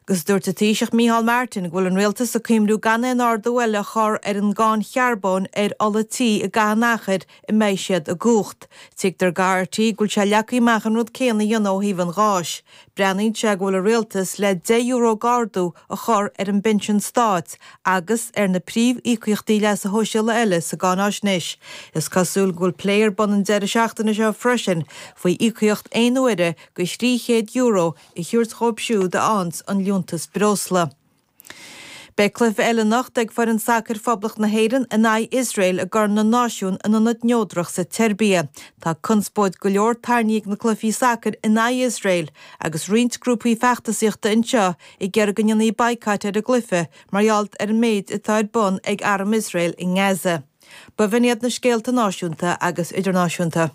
Agus dúirt an Taoiseach Micheál Martin go bhfuil an Rialtas ag cuimhniú gan aon ardú eile a chur ar an gcáin charbóin ar ola tí i gcaitheamh an achair a mbeidh siad i gcumhacht. Tuigtear do RTÉ go bhfuil sé leagtha amach an rud céanna a dhéanamh ó thaobh an gháis. Breathnaíonn sé go bhfuil an Rialtas le deich euro d'ardú a chur ar an bpinsean stáit agus ar na príomhíocaíochtaí leasa shóisialaigh eile sa gcáinaisnéis. Is cosúil go bhfuil plé ar bun an deireadh seachtaine seo freisin faoi íocaíocht aon uaire de 300 euro a thabhairt dhóib siúd a fhaghanns an liúntas breosla. Beidh cluiche eile anocht ag foireann sacair Phoblacht na hÉireann in aghaidh Iosrael i gCorn na Náisiún in ionad neodrach sa tSeirbia. Tá conspóid go leor tarraingthe ag na cluichí sacair in aghaidh Iosrael agus roinnt grúpaí feachtasaíochta anseo ag iarraidh go ndéanfaí baghcat ar an gcluiche mar gheall ar an méid atá ar bun ag arm Iosrael i nGaza. Ba bh'in iad na scéalta náisiúnta agus idirnáisiúnta.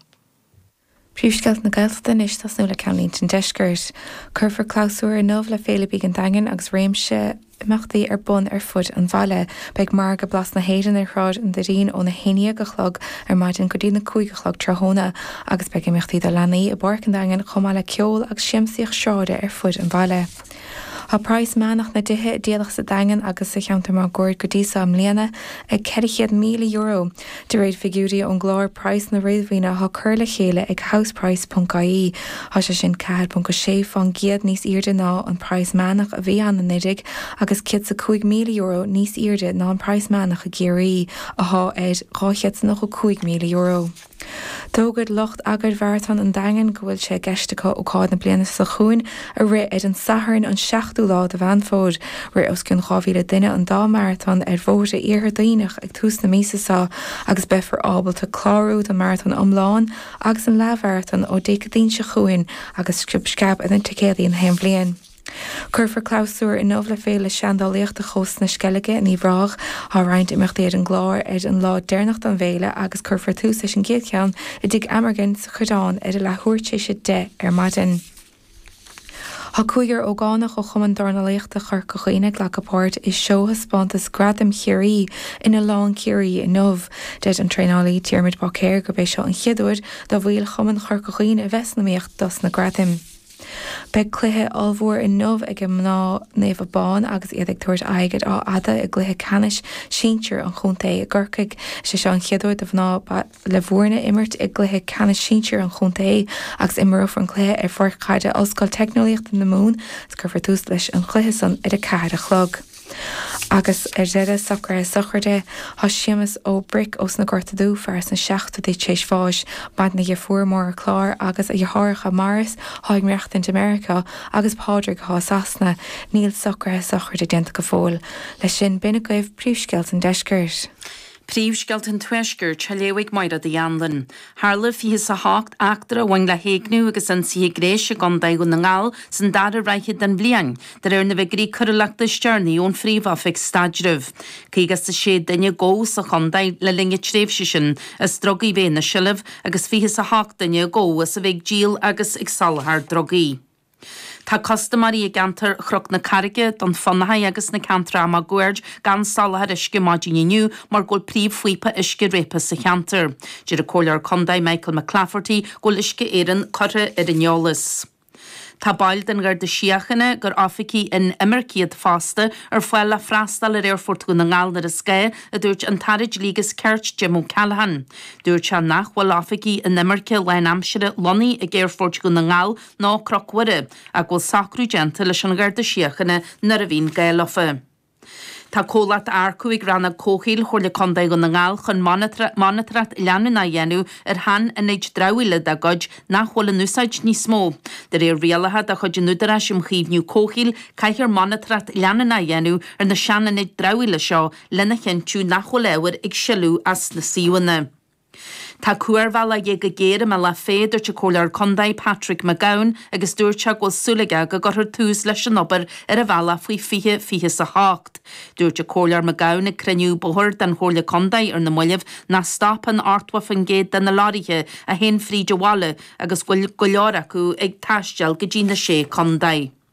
Príomhscéalta na Gaeltachta anois ag tosnú le Ceannlínte an Deiscirt. Cuirfear clabhsúr inniu le Féile Bídh an Daingin agus réimse imeachtaí ar bun ar fud an bhaile. Beidh Margadh Blas na hÉireann ar Shráid an Doirín óna haon déag a chlog ar maidin go dtí na cúig a chlog tráthnóna agus beidh imeachtaí do leanaí i bPáirc an Daingin chomh maith le ceol agus siamsaíocht sráide ar fud an bhaile. Tá praghas meánach na dtithe a díoladh sa Daingean agus sa cheantar máguaird go dtí seo i mbliana ag €400,000, de réir figiúirí ón gclár praghsanna réadmhaoine atá curtha le chéile ag Houseprice ponc ie Tá sé sin 4.6 fán gcéad níos aoirde ná an praghas meánach a bhí ann anuiridh agus €105,000 níos aoirde ná an praghas meánach i gCiarraí, athá ar €295,000. D'fhógair lucht eagair Mharatón an Daingin go bhfuil sé i gceist acu ócáid na bliana seo chugainn a rith ar an Satharn an 7ú lá de Mheán Fómhair. Rith os cionn 2,000 duine an dá mharatón ar bhóithre Iarthar Duibhneach ag tús na míosa seo agus beifear ábalta clárú don mharatón iomlán agus an leathmharatón ó Dé Céadaoin seo chugainn agus sciob sceab ar na ticéadaí gach aon bhliain. Cuirfear clabhsúr inniu le Féile Seandálaíochta Chósta na Sceilge in Uíbh Ráthach. Tá roinnt imeachtaí ar an gclár ar an lá deireanach don bhféile agus cuirfear tús leis an gcéad cheann i dTigh Amergin sa Choireán ar a leathuair tar éis a deich ar maidin. Tá cúigear ógánach ó Chumann Dornálaíochta Chorca Dhuibhne ag glacadh páirt i seóthaispeántas Gradam Chiarraí in Oileán Ciarraí inniu. Deir an traenálaí Diarmuid Báicéir gurb é seo an chéad uair do bhaill Chumann Chorca Dhuibhne a bheith san iomaíocht dos na gradaim. Beidh cluiche ollmhór inniu ag mná Naomh Abán agus iad ag tabhairt aghaidh ar Áth Fhada i gcluiche ceannais sinsir an chontae i gCorcaigh. Is é seo an chéad uair do mhná Bhaile Mhúirne imirt i gcluiche ceannais sinsir an chontae agus imreofar an cluiche ar pháirc chaide Ollscoil Teicneolaíochta na Mumhan agus cuirfear tús leis an chluiche san ar a ceathair a chlog. Agus ar deireadh, socruithe sochraide, tásc Shéamus Ó Bric ós na Gorta Dubha, fear sna 70idí tar éis bháis, maireann a dheirfiúr, Máire Clár, agus a dheartháireacha, Maurice, atá ag maireachtaint i Meiriceá, agus Pádraig, atá i Sasana. Níl socruithe sochraide déanta go fóill. Leis sin, b'in agaibh príomhscéalta an Deiscirt. Príomhscéalta an Tuaiscirt a léadh ag Máiréad Uí Annlain. Tharla 28 eachtra a bhain le héigniú agus ionsaithe gnéis i gContae Dhún na nGall san dara ráithe den bhliain, de réir na bhfiguirí coiriúlachta is deireanaí ón Phríomh-Oifig Staidrimh. Caoga is a sé duine a gabhadh sa chontae le linn na tréimhse sin as drugaí a bheith ina seilbh agus fiche is a hocht duine a gabhadh as a bheith ag díol agus ag soláthar drugaí. Tá custaiméirí i gceantar Chnoc na Carraige, Dún Fionnachaidh agus na ceantair máguaird gan soláthar uisce maidin inniu mar go bhfuil príomhphaíopa uisce réabtha sa cheantar. Deir an Comhairleoir Contae Michael McClafferty go bhfuil Uisce Éireann curtha ar an eolas. Tá baill den Gharda Síochána, gur oifigigh inimirce iad fosta, ar fáil le freastal ar Aerfort Dhún na nGall nuair is gá, a dúirt an tAire Dlí agus Cirt, Jim O'Callaghan. Dúirt sé nach bhfuil oifigigh inimirce lánaimseartha lonnaithe ag Aerfort Dhún na nGall nó Cnoc Mhuire, ach go bhfuil socrú déanta leis an Gharda Síochána nuair a bhíonn gá leofa. Tá comhlacht á earcú ag Rannóg Comhshaoil Chomhairle Contae Dhún na nGall chun monataracht leanúnach a dhéanamh ar sheanionaid dramhaíola dá gcuid nach bhfuil in úsáid níos mó. De réir rialacha de chuid an Údaráis um Chaomhnú Comhshaoil caithfear monataracht leanúnach a dhéanamh ar na seanionaid dramhaíola seo lena chinntiú nach bhfuil ábhair ag sileadh as na suíomhanna. Tá cuarbhealach de dhíth go géar i mBéal Átha Féa, dúirt an Comhairleoir Contae, Patrick McGowan agus dúirt sé go bhfuil súil aige go gcuirfear tús leis an obair ar an bhealach faoi 2028. Dúirt an Comhairleoir McGowan ag cruinniú bóithre den Chomhairle Contae ar na mallaibh nach stopann 80% de na lorraithe a théann fríd an bhaile agus go bhfuil go leor acu ag taisteal go dtí na Sé Contae.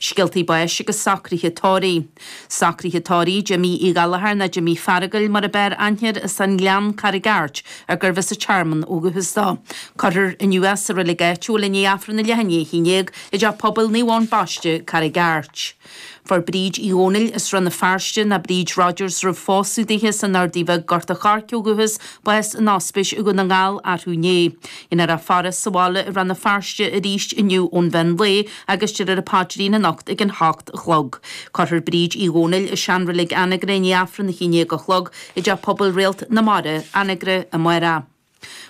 Scéaltaí báis agus socruithe tórraimh. Socruithe tórraimh Jimmí Uí Ghallchóir nó Jimmí Feargail mar ab fhearr aithne air as an nGleann, Carraig Airt, ar arbh as an Tearmann ó dhúchas dó. Cuirfear inniu é sa roilig áitiúil i ndiaidh Aifreann a leath i ndiaidh a haon déag i dteach pobail Naomh Eoin Baiste, Carraig Airt. Fuair Bríd Uí Dhomhnaill as Rann na Feirste, nó Bríd Rodgers roimh phósadh dithe as an Ardaidh Bheag, Gort a' Choirce, ó dhúchas, bás in Ospís Dhún na nGall, arú inné. Dhéanfar í a fhaire sa bhaile i Rann na Feirste arís inniu ón mheán lae, agus déarfar an Paidrín anocht ag an hocht a chlog. Cuirfear Bríd Uí Dhomhnaill i seanreilig Anagaire i ndiaidh Aifreann a haon déag a chlog i dTeach Pobail Réalt na Mara, Anagaire, amárach.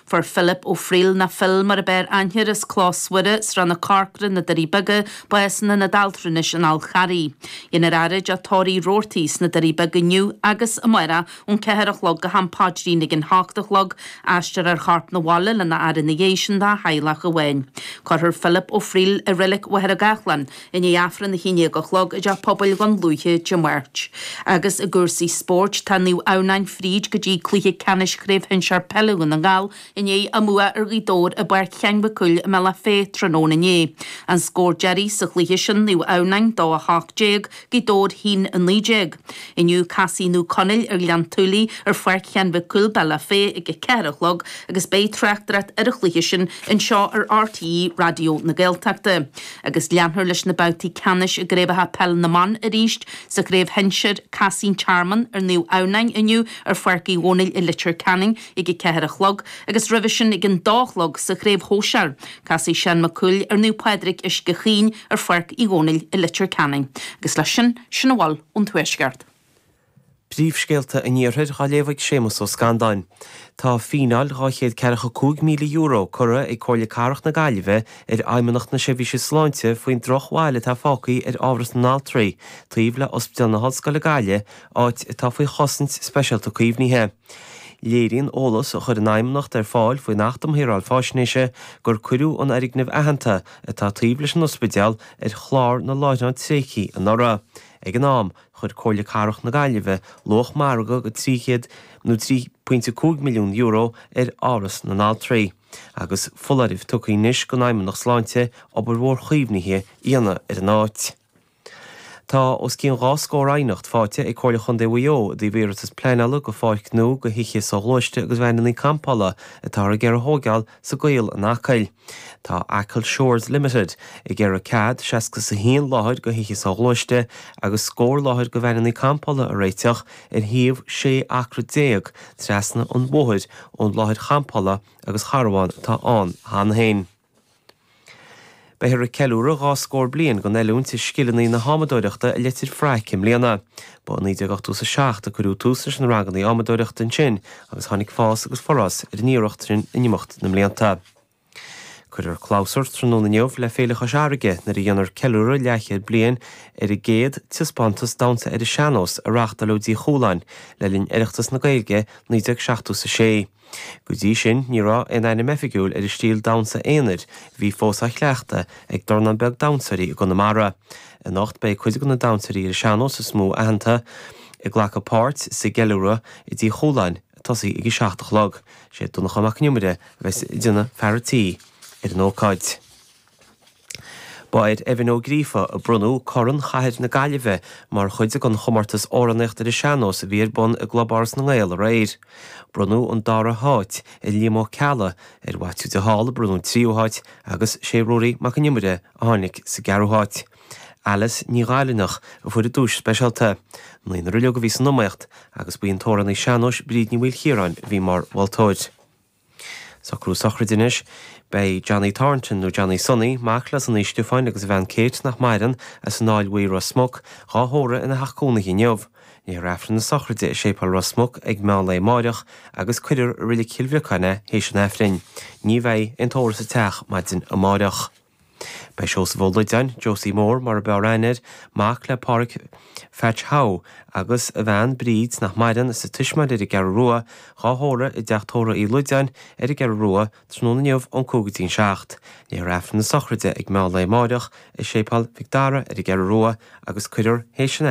Fuair Philip Ó Frighil, nó Phil mar ab fhearr aithne air, as Clós Mhuire, Srath na Corcra, na Doirí Beaga, bás in Aonad Altranais an Fháil Charraigh. Dhéanfar é a fhaire i dteach tórraimh Roarty sna Doirí Beaga inniu agus amárach Ón ceathair a chlog go ham páidrín ag an h-ocht a chlog, aistreofar a chorp na bhaile lena fhaire na dhéidh sin dá theaghlach amháin. Cuirfear Philip Ó Frighil i Reilig Mhachaire Gathlán i ndiaidh Aifreann a haon déag a chlog i dteach pobail Dhún Lúiche Dé Máirt. Agus i gcúrsaí spóirt, tá Naomh Adhamhnáin fríd go dtí cluiche ceannais Chraobh Shinsear Peile Dhún na nGall I ndiaidh a mbua ar Ghaoth Dobhair i bPáirc Sheáin Mhic Cumhaill i mBealach Féich tráthnóna inné, an scór deiridh sa chluiche sin, Naomh Adhamhnáin 2 18, Gaoth Dobhair 1 19. Inniu casfaidh Naomh Conaill ar Ghleann tSúilí ar Pháirc Sheáin Mhic Cumhaill, Bealach Féich ag a 4 a chlog agus beidh tráchtaireacht ar an chluiche sin anseo ar RTÉ Raidió na Gaeltachta agus leanfar leis na babhtaí ceannais i gCraobhacha Peile na mBan arís. Sa Chraobh Shinsir, casfaidh An Tearmann ar Naomh Adhamhnáin inniu ar Pháirc Uí Dhomhnaill i Leitir Ceanainn. ag a ceathair a chlog agus roimhe sin ag an dó a chlog sa Chraobh Shóisear. Casfaidh Seán Mac Cumhaill ar Naomh Pádraig Uisce Chaoin ar Pháirc Uí Dhónaill i Leitir Ceanainn. Agus leis sin, sin a bhfuil ón Tuaisceart. Príomhscéalta an Iarthair dhá léamh ag Séamus Ó Scanláin. Tá fíneáil dhá chéad ceathracha cúig míle euro curtha ag Comhairle Cathrach na Gaillimhe ar Fheidhmeannacht na Seirbhíse Sláinte faoin drochbhail atá fágthaí ar Áras na nAltraí taobh le Ospidéal na hOllscoile Gaillimh áit atá faoi chosaint speisialta caomhnaithe. Léiríonn eolas a chuir an Fheidhmeannacht ar fáil faoin Acht um Shaoráil Faisnéise gur cuireadh an fhoirgneamh aitheanta atá taobh leis an ospidéal ar chlár na láithreán tréigthe anuraidh. Ag an am, chuir Comhairle Cathrach na Gaillimhe luach margaidh de €300 nó €3.5 milliún ar Áras na nAltraí agus foláireamh tugtha anois don Fheidhmeannacht Sláinte obair mhór chaomhnaithe a dhéanamh ar an áit. Tá os cionn dhá scór aighneacht faighte ag Comhairle Chontae Mhaigh Eo i dtaobh iarratas pleanála do pháirc nua do thithe soghluaiste agus veaineannaí campála atáthar ag iarraidh a thóigeáil sa gCaol in Acaill. Tá Achill Shores Limited ag iarraidh cead seasca 's a haon láthair do thithe soghluaiste agus scór láthair do veaineannaí campála a réiteach ar shuíomh sé acra déag trasna an bhóthair ón láthair champála agus charbhán atá ann cheana féin. Beifear ag ceiliúradh dhá scór bliain den oiliúint i scileanna na hadhmadóireachta i Leitir Fraic i mbliana. Ba i 1987 a cuireadh tús leis na ranganna adhmadóireachta ansin agus tháinig fás agus forás ar an iarracht sin in imeacht na mblianta. Cuirfear clabhsúr tráthnóna inniu le Féile Chois Fharraige nuair a dhéanfar ceiliúradh leathchéad bliain ar an gcéad taispeántas damhsa ar an sean-nós a reáchtáladh i dTigh Chualáin le linn Oireachtas na Gaeilge 1976. Go dtí sin, ní raibh aon ainm oifigiúil ar an stíl damhsa aonair a bhí fós á chleachtadh ag dornán beag damhsóirí i gConamara. Anocht beidh cuid de na damhsóirí ar an sean-nós is mó aitheanta ag glacadh páirt sa gceiliúradh i dTigh Chualáin, ag tosaí ag a seacht a chlog. Is é Donncha Mac Con Iomaire a bheas ina fear a tí ar an ócáid. Ba ar Evan Ó Gríofa a bronnadh Corn Chathair na Gaillimhe mar chuid den chomórtas Amhránaíocht ar an Sean-Nós a bhí ar bun i gClub Áras na nGael aréir. Bronnadh an dara háit ar Liam Ó Ceallaigh, ar Mhaitiú de Hál a bronnadh an tríú háit agus sé Ruairí Mac an Iomaire a tháinig sa gceathrú háit. Alice Ní Ghailinneach a fuair an duais speisialta. Naonúr uilig a bhí san iomaíocht agus ba í an t-amhránaí sean-nóis Bríd Ní Mhaoilchiaráin a bhí mar mholtóir. Socrú sochraide anois. Beidh Johnny Thornton, nó Johnny Sonny, mac le Sonaí Stiofáin agus a bhean Kate, nach maireann, as An Aill Bhuí, Ros Muc, dhá thórramh ina theach cónaithe inniu. Léifear Aifreann na sochraide i Séipéal Ros Muc ag meán lae amáireach agus cuirfear i Reilic Chill Bhriocáin é théis an Aifrinn. Ní bheidh aon tórramh sa teach maidin amáireach. Beidh Seosamh Ó Loideáin, Josie Mór mar a b'fhearr aithne air, mac le Pádhraic Pheaits Howe agus a bhean Bríd, nach maireann, as an Tismeáin ar an gCeathrú Rua, dhá thórramh i dteach tórraimh Uí Loideáin ar an gCeathrú Rua tráthnóna inniu ón cúig go dtí an seacht. Léifear Aifreann na Sochraide ag meán lae amáireach i Séipeál Mhic Dara ar an gCeathrú Rua agus cuirfear théis an.